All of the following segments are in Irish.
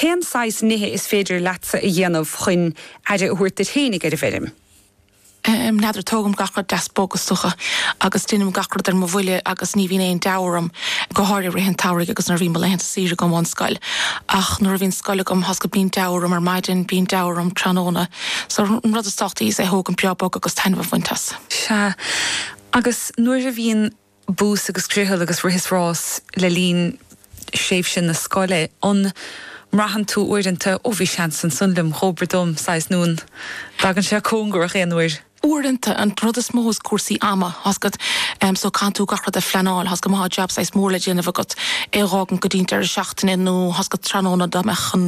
Cén saghas nithe is féidir leatsa a dhéanamh chun aire a thabhairt duit fhéinig ar an bhfeirm? N'fheadar. Tógaim gach rud deas bog is dócha agus deinim gach rud ar mo bhuille agus ní bhíonn aon deabhadh orm, go háirithe i rith an tsamhraidh agus nuair a bhíonn mo laethanta saoire agam ón scoil. Ach nuair a bhíonn scoil agam, tá's agat, bíonn deabhadh orm ar maidin, bíonn deabhadh orm tráthnóna. So, an rud is tábhachtaí is é a thógaint breá bog agus taitneamh a bhaint as. Sea. Agus nuair a bhíonn bús agus griothal agus rith is rás le linn thréimhse na scoile, an mbraitheann tú uaireanta, ó bhí seans ansan liom, dhóbair dom, saghas, nó an dtagann sé cóngarach aon uair? Uaireanta, an rud is mó is cúrsaí ama, tá's agat, em so caitheann tú gach rud a phleanáil, tá's agat, má thá jab saghas mór le déanamh agat, é a dh'fhágaint go dtí'n deireadh seachtaine nó tá's agat, tráthnóna dá mbeadh an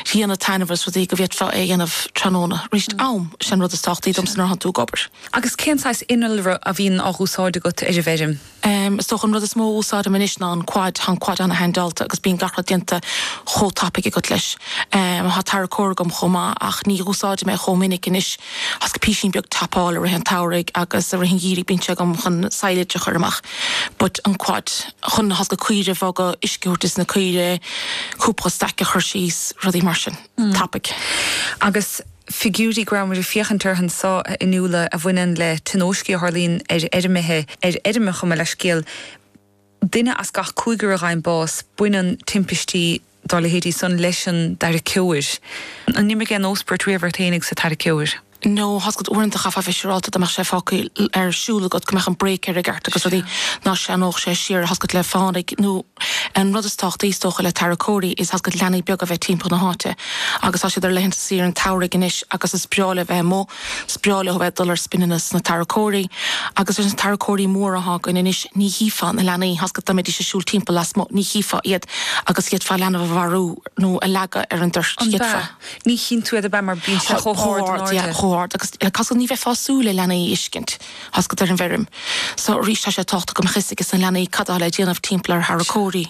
ghrian ag taitneamh agus rudaí go bhféadfá é a dhéanamh tráthnóna, aríst, am, sin an rud is tábhachtaí domsa nuair a thánn tú ag obair. Agus cén saghas innealra a bhíonn á dh'úsáid agat ar an bhfeirm? Is dócha an rud is mó a úsáidim anois ná an quad, tá an quad an-haindeálta agus bíonn gach rud déanta chomh tapaidh agat leis. Tá tarracóir agam chomh maith ach ní dh'úsáidim é chomh minic anois, tá's agat, písín beag topáil i rith an tsamhraidh agus i rith an gheimhridh bíonn sé agam chun silage a chuir amach but an quad chun, tá's agat, caoire a bhogadh, uisce a thabhairt dos na caoirigh, cúpla staic a chuir síos, rudaí mar sin, tapaidh. Agus. figiúirí go rabhamair ag féachaint orthu anseo, a Fhionnuala, a bhaineann le tionóiscí a tharlaíonn ar fheirmithe, ar fheirmeacha, gabh mo leithscéal, duine as gach cúigear a fhaigheann bás, baineann timpistí dá leithéidí san leis an dtarraiceoir. An n-imigh aon óspairt riamh ort fhéinig sa tarraiceoir? No, tá's agat, uaireanta chaithfeá a bheith siúrálta dá mbeadh sé fágtha ar siúl agat go mbeadh an brake air i gceart agus rudaí, ná shleamhnódh sé siar, tá's agat, le fánaidh nó, An rud is tábhachtaí, is dócha, le tarracóirí is ea, tá's agat, leanaí beaga a bheith timpeall na háite agus tá siad ar laethanta saoire an tsamhraidh anois agus is breá leo bheith amuigh, is breá leo a bheith ag dul ar spinneanna sna tarracóirí agus leis na tarracóirí móra atá againn anois ní chífeá na leanaí, tá's agat, dá mbeidís ag siúl timpeall lasmuigh, ní chífeá iad agus d'fhéadfá leanbh a mharú nó a leagadh ar an dtoirt, An ea? d'fhéadfá. Ní chíonn tú iad, ab ea, mar bíonn sé chomh hard in airde? Chomh hard, yeah, chomh hard agus tá's agat, ní bheifeá ag súil le leanaí a fheiscint. Tá's agat, ar an bhfeirm so arís, tá sé an-tábhachtach go mbeadh 'fhios ages na leanaí cad atá le déanamh timpeall ar tharracóirí.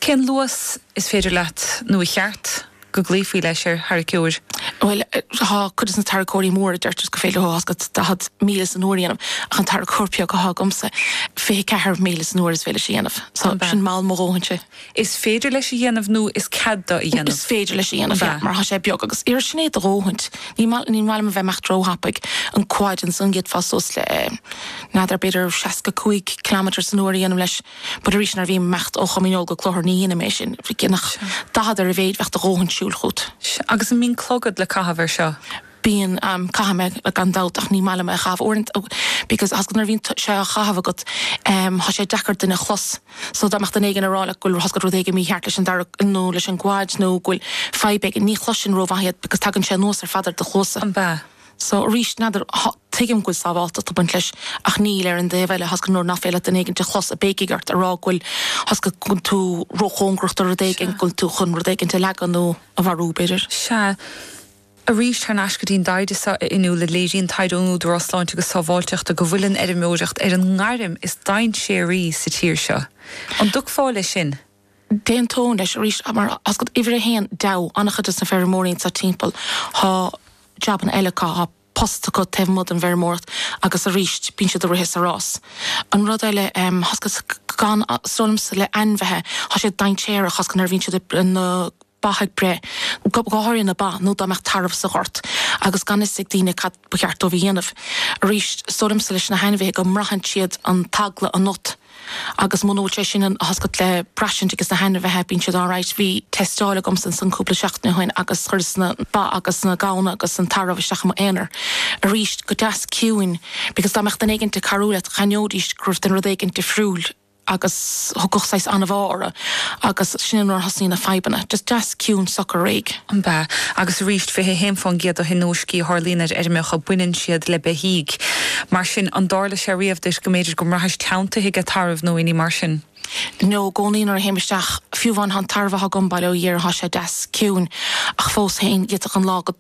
Cén luas is féidir leat, nó ar cheart, go gcloífí leis ar tharraiceoir? Bhuel, tá cuid des na tarracóirí móra, deirtear go féidir leo, tá's agat, 40 míle san uair a dhéanamh, ach an tarracóir beag atá agamsa, 24 míle san uair is féidir leis a dhéanamh, so sin mall mo dhóthainse. Is féidir leis a dhéanamh nó is cead dó a dhéanamh? Is féidir leis a dhéanamh, yeah, Bha. mar tá sé beag agus iarr sin é do dhóthaint. Ní maith, ní maith liom a bheith ag imeacht róthapaidh. An quad ansan d'fhéadfá suas le eh n'fheadar b'fhéidir 65 kilometres san uair a dhéanamh leis but arís nuair a bhím ag imeacht ó Chom Dhíneol go Cloichear ní dhéanaim é sin. Gidh nach Sure. 40 ar a mhéid bheadh do dhóthaint siúil fút. Sh, Agus an mbíonn clogad le caitheamh ar seo? Bíonn, caithim é gan dabht, ach ní maith liom é a chaitheamh uaireanta because tá fhios agat nuair a bhíonn sé á chaitheamh agat tá sé deacair duine a chlos so dá mbeadh duine éigin ag rá like go bhfuil tá fhios agat rud éigin mícheart leis an dara nó leis an gcuid nó go bhfuil fadhb éigin ní chloiseann tú rómhaith iad because tagann sé anuas ar fad ar do chluasa. An-mhaith. So arís n'fheadar, tuigim go bhfuil sábháilteacht ag baint leis ach níl ar an dtaobh eile tá fhios agat nuair nach féidir leat duine éigin a chlos ag béicigh ort a rá go bhfuil tá fhios agat go bhfuil tú róchóngarach do rud éigin go bhfuil tú chun rud éigin a leagan nó a mharú b'fhéidir. Sea. Arís, thar n-ais go dtí an dtaighde seo inniu, léiríonn taighde ón Údarás Sláinte agus Sábháilteachta go bhfuil an fheirmeoireacht ar an ngairm is dainséaraí sa tír seo. An dtiocfá leis sin? D'aontóinn leis, arís, mar tá fhios agat uimhir a haon deabhadh an-chuid de na feirmeoirí anseo timpeall. Tá jabanna eile acu, tá post acu taobh amuigh den bhfeirmeoireacht agus arís bíonn siad ag rith sa rás. An rud eile, tá fhios agat, is dóigh liomsa le ainmhithe, tá sé dainséarach tá fhios agat nuair a bhíonn siad ag. ba ag breith, go háirithe na ba, nó dá mbeadh tarbh sa ghort agus gan fhios ag daoine cad ba cheart dóibh a dhéanamh. Arís, is dóigh liomsa leis na hainmhithe go mbraitheann siad an t-eagla ionat agus muna bhfuil sé sin ionat tá fhios agat le braistint ages na hainmhithe, bíonn siad alright. Bhí teisteáil agamsa ansan cúpla seachtain ó shin agus chuireas na ba agus na gamhna agus an tarbh isteach i m'aonar, arís, go deas ciúin, because dá mbeadh duine éigin ag cabhrú leat, d'aithneoidís go raibh rud éigin difriúil. agus thiocfadh saghas anbhá orthu agus sin nuair a thosnaíonn na fadhbanna. Just deas ciúin socair réidh. An-mhaith. Agus arís, 21% de thionóiscí a tharlaíonn ar fheirmeacha, baineann siad le beithígh. Mar sin, an dtarla sé riamh duit go mb'fhéidir go mbraithis teanntaithe ag tarbh nó aon ní mar sin? No, i gcónaí nuair a théim isteach, fiú amháin tá an tarbh atá agam bail ó Dhia air tá sé deas ciúin ach fós féin d'fhéadfadh an lá go.